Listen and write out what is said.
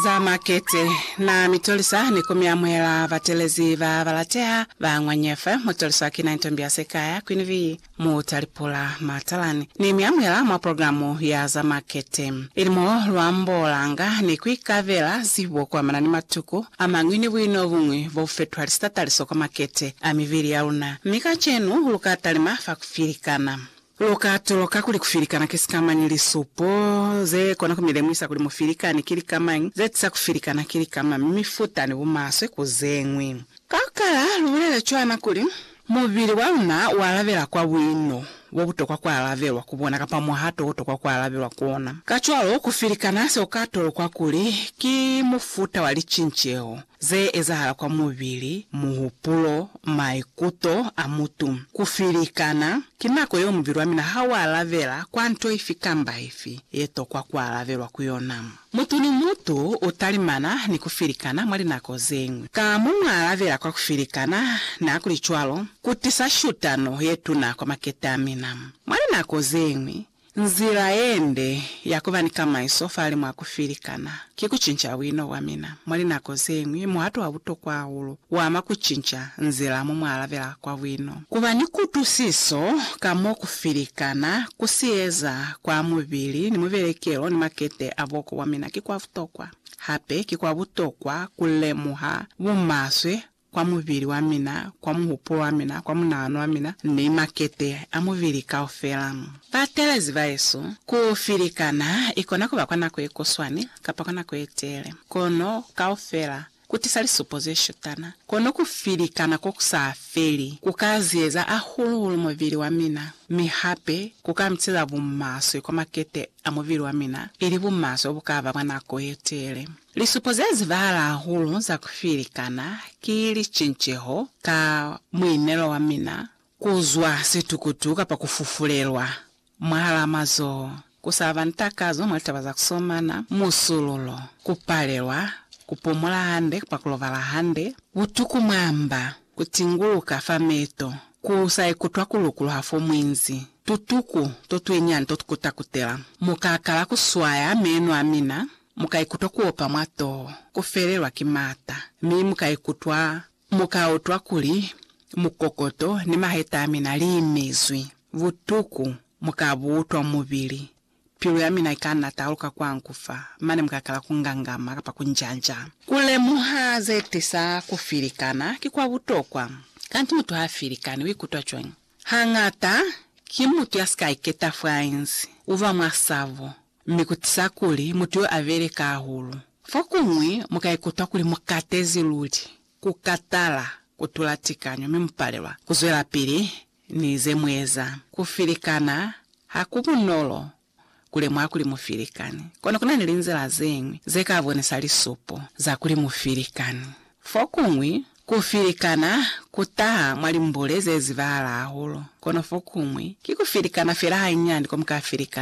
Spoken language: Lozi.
Za makete na mitolisa ni ku mi amuhela batelezi ba ba lateha ba Ngwanyefe. Mutolisa kina Ntombiase Sikaya, Queen Bee, Mutalipula, Matalani, ni mi amuhela mwa programu ya za makete. Ili mo lu ambolanga ni ku ikabela zibo kuamana ni matuku amañwi ni buino buñwi bo bu fetuhali sitataliso kwa makete a mibili ya luna. Mi kacenu lu ka talima fa ku filikana. Lu ka tuloka kuli ku filikana ki sikamañi? Lisupo ze kona ku mi lemuhisa kuli mu filikani ki lika mañi, ze tisa ku filikana ki lika mañi, mi futa ni bumaswe ku ze ñwi. Ka ku kala, lu bulele cwana kuli, Mubili wa luna u alabela kwa buino bo butokwa ku alabelwa ku bona kapa muhato o tokwa ku alabelwa ku ona. Kacwalo, ku filikana se ku ka tolokwa kuli ki mufuta wa licinceho. Ze ezahala kwa mubili, muhupulo, maikuto a mutu. Ku filikana, ki nako yeo mubili wa mina ha u alabela kwa nto ifi kamba ifi ye tokwa ku alabelwa ku yona. Mutu ni mutu u talimana ni ku filikana mwa linako ze ñwi. Ka mo mu alabela kwa ku filikana, nihakulicwalo, ku tisa shutano ye tuna kwa makete a mina. Mwa linako ze ñwi, Nzila yende ya kuba ni kamaiso fale mwa kufilikana ki kucinca buino bwa mina. Mwa linako zeñwi, muhato wa butokwa hahulu uama kucinca nzila mo mualabela kwa buino. Kuba ni kutwisiso ka mo kufilikana kusieza kwa mubili ni mubelekelo ni makete a boko bwa mina ki kwa butokwa. Hape ki kwa butokwa kulemuha bumaswe kwa mubili wa mina, kwa muhupulo wa mina, kwa munahano wa mina, ni makete a mubili kaufela. Batelezi bahesu, ku filikana ikona kuba kwa nako yekuswani kapa kwa nako yetele, kono kaufela kutisa lisupo zeshutana. Kono ku filikana kokusa feli kuka ziyeza hahulu-hulu mubili wa mina, mi hape kuka mitiza bumaswe kwa makete a mubili wa mina, ili bumaswe bukaba bwa nako yetele. Lisupo ze zibahala hahulu za ku filikana ki licinceho ka muinelo wa mina, ku zwa situkutu kapa ku fufulelwa mwahalaa mazoho, ku sa ba ni takazo mwa litaba za ku somana, musululo, ku palelwa ku pumula hande kapa ku lobala hande, butuku mwa mba, ku tinguluka fa meto, ku sa ikutwa ku lukuluha fo mwinzi, tutuku to twinyani to ku takutela, mukaakala ku swaya meno a mina, Mu ka ikutwa ku opa mwa toho, ku felelwa ki m'ata, mi mu ka ikutwa, mu ka utwa kuli mukokoto ni maheta a mina li imizwi. Butuku mu ka bu utwa mubili. Pilu ya mina i ka na taluka kwangu fa, mane mu ka kala ku ngangama kapa ku njanja. Ku lemuha ze tisa ku filikana ki kwa butokwa. Kanti mutu ha filikani u ikutwa cwañi? Hañata, ki mutu ya si ka iketa fo a inzi, u ba mwa sabo, mi ku tiisa kuli mutu yo a beleka hahulu. Fokuñwi mu ka ikutwa kuli mu katezi luli, ku katala, ku tula tikanyo, mi mu palelwa ku zwelapili ni ze mu eza. Ku filikana ha ku bunolo ku lemuha kuli mu filikani. Kono ku na ni linzila ze ñwi ze ka bonisa lisupo za kuli mu filikani. Fokuñwi, ku filikana ku taha mwa limbule ze zibahala hahulu. Kono fokuñwi, ki ku filikana fela hanyinyani ko mu ka filikana.